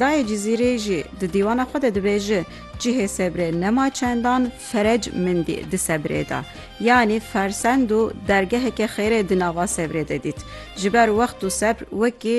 Dayê Cizîrê jî di dîwana xwe de dibêje, Cihê sebrê nema çendan ferec mindî di sebrê de. Yanî fersend û dergeheke xêrê di nava sebrê de dît. Ji ber wext û sebr wekî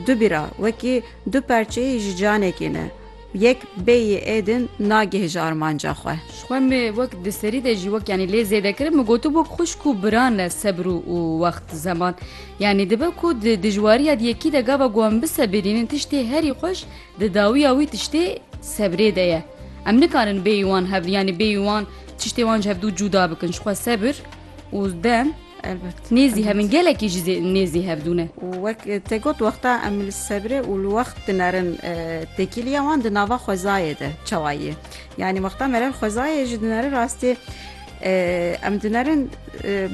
du bîra, wekî du perçeyî ji canekî ne. Yek bêyî êdin nagih ji armanca xwe. Ji xwe me wek di serî de jî wek yanî lê zêde kirin, min gotibû xwişk û biran ne sebr û wext, zeman, Yanî dibe ku di dijwariya di yekî de gava ku em bisebirînin tiştê herî xweş di dawiya wî tiştê sebrê de ye. Em nikarin bêyî wan hev yanî bêyî wan tiştê wan ji hev dû cûda bikin ji xwe sebir û dem Elbet. Nêzî hev in Elbet. gelekî jî zê- nêzî hev dû ne. Û wek te got wexta em li sebrê û li wext dinerin e, têkiliya wan di nava xwezayê de çawa ye. Yanî wexta merev xwezayê jî dinerin rastî e, em dinerin e,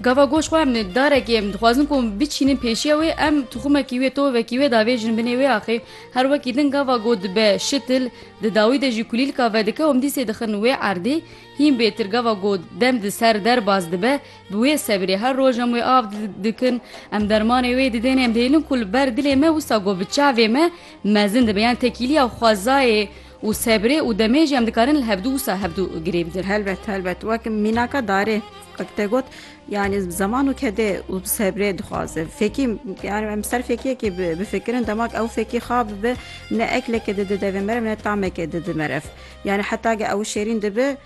Gava goş xwarinê darekê em dixwazin ku em biçînin pêşiya wê em tuxumekî wê tovekî wê davêjin binê wê axê her wekî din gava go dibe şitil di dawî de jî kulîlka vedike em dîsê dixin wê erdê hîn bêtir gava go dem di ser derbas dibe bi wê sebirê her roj em wê av dikin em dermanê wê didên em dihêlin ku li ber dilê me wisa go bi çavê me mezin dibe yan tekîliya xwezayê Û sebrê û demê jî em dikarin li hevdu wisa hevdu girê bidin. Helbet helbet wek mînaka darê wek te got yanî zeman û kedê û sebrê dixwaze. Fekî yanî em ser fekiyekê bifikirin demak ew fekî xa bibe ne ekleke dide devê mere ne tameke dide meref. Yanî heta ge ew şêrîn dibe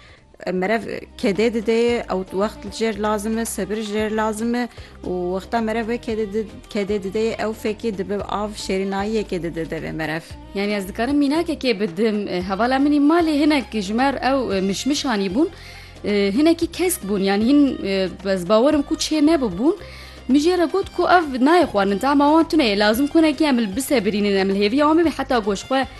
Merev kedê dide ye ew wext li jêr lazim e, sebir ji jêr lazim e û wexta merev wê kedê di- kedê dide ye ew fekî dibe av şêrînayiyekê dide devê merev. Yanî ez dikarim mînakekê bidim. E, Hevala min ê malê hinek ji me re ew e, mişmişanî bûn. E, Hinekî kesk bûn yanî hin e, ez bawer im ku çê nebûbûn. Min jê re got ku ev nayê xwarin tahma wan tune ye lazim ku hinekî em li bisebirînin em li hêviya wan bibin heta goşxwe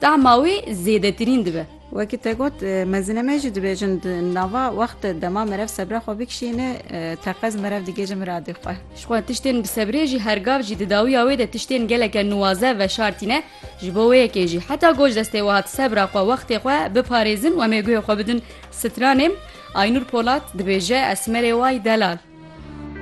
Tahma wê zêdetirîn dibe. Wekî te got, mezine me jî dibêjin di nava wextê dema merev sebra xwe bikişîne, teqez merev digêje miradê xwe. Ji xwe tiştên bi sebrê jî her gav jî di dawiya wê de tiştên geleke nuwaze veşartîne. Ji bo wê yekê jî heta goj destê we hat sebra xwe wextê xwe biparêzin û em ê guhê xwe bidin stranê. Aynûr Polat dibêje, Esmerê Way Delal.